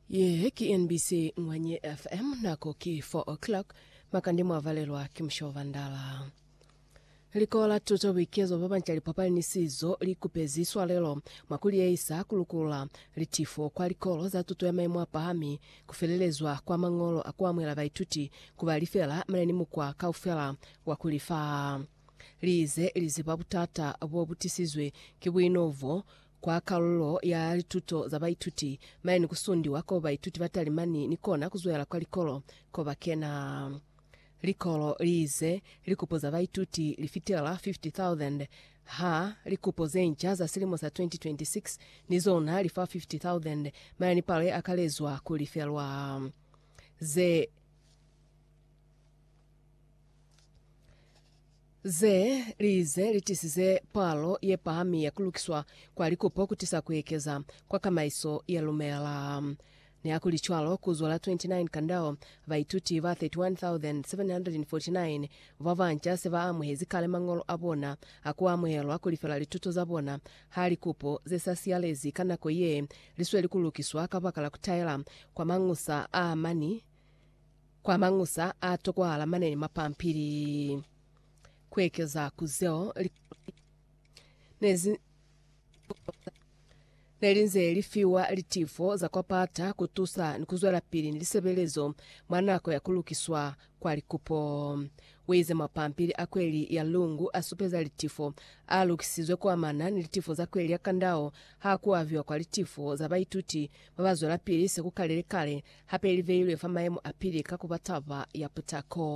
Ye ki NBC Ngwanye FM, nako ki 4 o'clock, makande mwa valelwa ki Mushobo Bandala. Likolo la tuto boikezo ba banca lipapali ni sizo li kupezi swalelo mwa ku liehisa ku lukula litifo kwa likolo za tuto ya maimo a pahami, ku felelezwa kwa mañolo a ku amuhela baituti ku ba lifela mane ni mukwa kaufela wa ku li fa. Li ize li ziba butata bo bu tisizwe ki buinovo Kwa kalulo ya lituto za baituti, mane ni kusundiwa ko baituti ba talimani ni kona kuzwela kwa likolo ko ba kena. Likolo liize, Likupo za baituti li fitela 50,000 ha likupo ze nca za silimo sa 2026 ni zona li fa 50,000, mane ni palo ye akalezwa ku lifelwa ze Ze li ze li tisize palo ye pahami ya ku lukiswa kwa likupo ku tisa ku ekeza kwa kamaiso ya lumela. Nihakulicwalo, ku zwa la 29 Kandao, baituti ba 31,749 ba banca se ba amuhezi kale mañolo a bona a ku amuhelwa ku lifela lituto za bona ha likupo ze sa siyalezi ka nako ye li sweli ku lukiswa kabakala ku taela kwa mañusa a mani Kwa mañusa a tokwahala mane ni mapampili. Ku ekeza ku zeo, likolo ne zi ne li nze li fiwa litifo za kwa pata ku tusa ni ku zwelapili ni lisebelezo mwa nako ya ku lukiswa kwa likupo. U ize mapampili a kweli ya Lungu a supeza litifo a lukisizwe ku amana ni litifo za kweli ya kandao ha ku aviwa kwa litifo za baituti ba ba zwelapili se ku kalile kale, hape li beilwe fa mayemo a pili ka ku ba taba ya putako.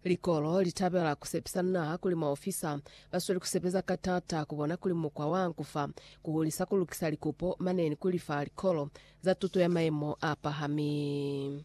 Likolo li tabela ku sepisa naha kuli maofisa ba sweli ku sebeza ka t'ata ku bona kuli mukwa wa ku fa, ku hulisa ku lukisa likupo mane ni ku lifa likolo za tuto ya mayemo a pahami.